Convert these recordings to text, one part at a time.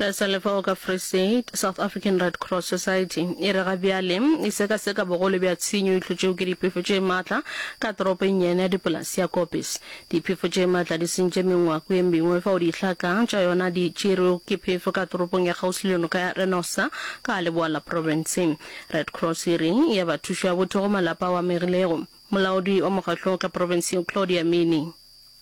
Le sa le fao ka Free State, South African Red Cross Society e re ga bjale e sekaseka bogolo bja tshenyo e hlotšego ke diphefo tše matla ka toropo e nnyane ya dipolase ya Koppes. Diphefo tše matla di sentše mengwako ye mengwe fao dihlaka tša yona di tšerwego ke phefo ka toropong ya kgauswi le noka ya Rhenossa ka leboa la profense. Red Cross e re e a ba thušo ya botho go malapa ao a amegilego. Molaodi wa mokgatlo wo ka profenseng Claudia Mini,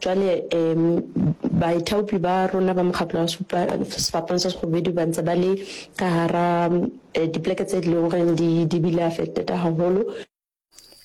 Jwale um baithaopi ba rona ba mokgatlo wa supa sefapano sa segobedu ba ntse ba le ka gara eh, dipoleke tse di leng goreng di di bile affected haholo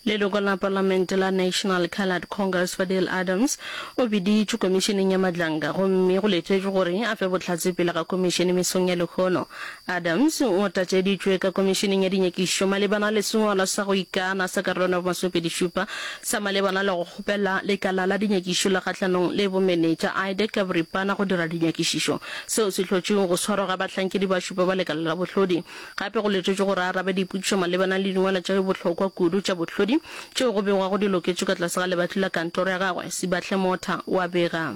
Leloko la palamente la National Coloured Congress Fadil Adams o biditšwe komišeneng ya Madlanga gomme go letšwetšwe gore a fe bohlatse pele ga komišene mesong ya lehono Adams o tlatšeditšwe ka Komišeneng ya Dinyakišo malebana le sengwalwa sa go ikana sa Karolwana ya Bomasomepedi-šupa sa malebana le go kgopela lekala la dinyakišo la kgahlanong le bomenetša IDEC ka boripana go dira dinyakišišo seo se hlotšwego go swarwa ga bahlankedi ba šupa ba lekala la bohlodi. Gape go letetšwe gore a arabe dipotšišo malebana le dingwalwa tša bohlokwa kudu tša bohlodi tšeo go begwago di loketšwe ka tlase ga lebatli la kantoro ya gagwe, Sibahle Motha o a bega.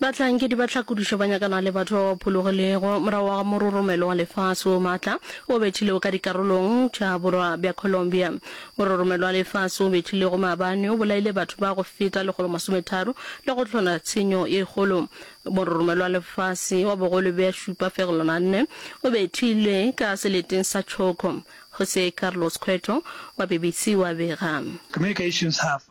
Bahlankedi ba tlhakodišo ba nyakana le batho ba ba phologilego morago ga mororomelo wa lefase wo matla o bethilego ka dikarolong tša borwa bja Colombia. Mororomelo wa lefase o bethilego maabane o bolaile batho ba go feta lekgolo masometharo le go hlola tshenyo ye kgolo. Mororomelo wa lefase wa bogolo bja šupa fegelwana a nne o bethilwe ka seleteng sa Choco, Jose Carlos Cueto wa BBC wa bega. Communications Half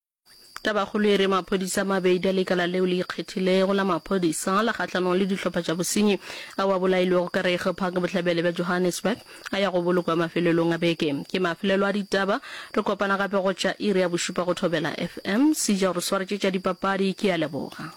Tabakgolo e re maphodisa a mabedi a lekala leo le ikgethilego la maphodisa la kgahlanong le dihlopha tša bosenyi ao a bolailwego ka Rego Park bohlabele bja Johannesburg a ya go bolokwa mafelelong a beke. Ke mafelelo a ditaba. Re kopana gape go tša iri ya bošupa go Thobela FM. Sija o re swaretše tša dipapadi. Ke a leboga.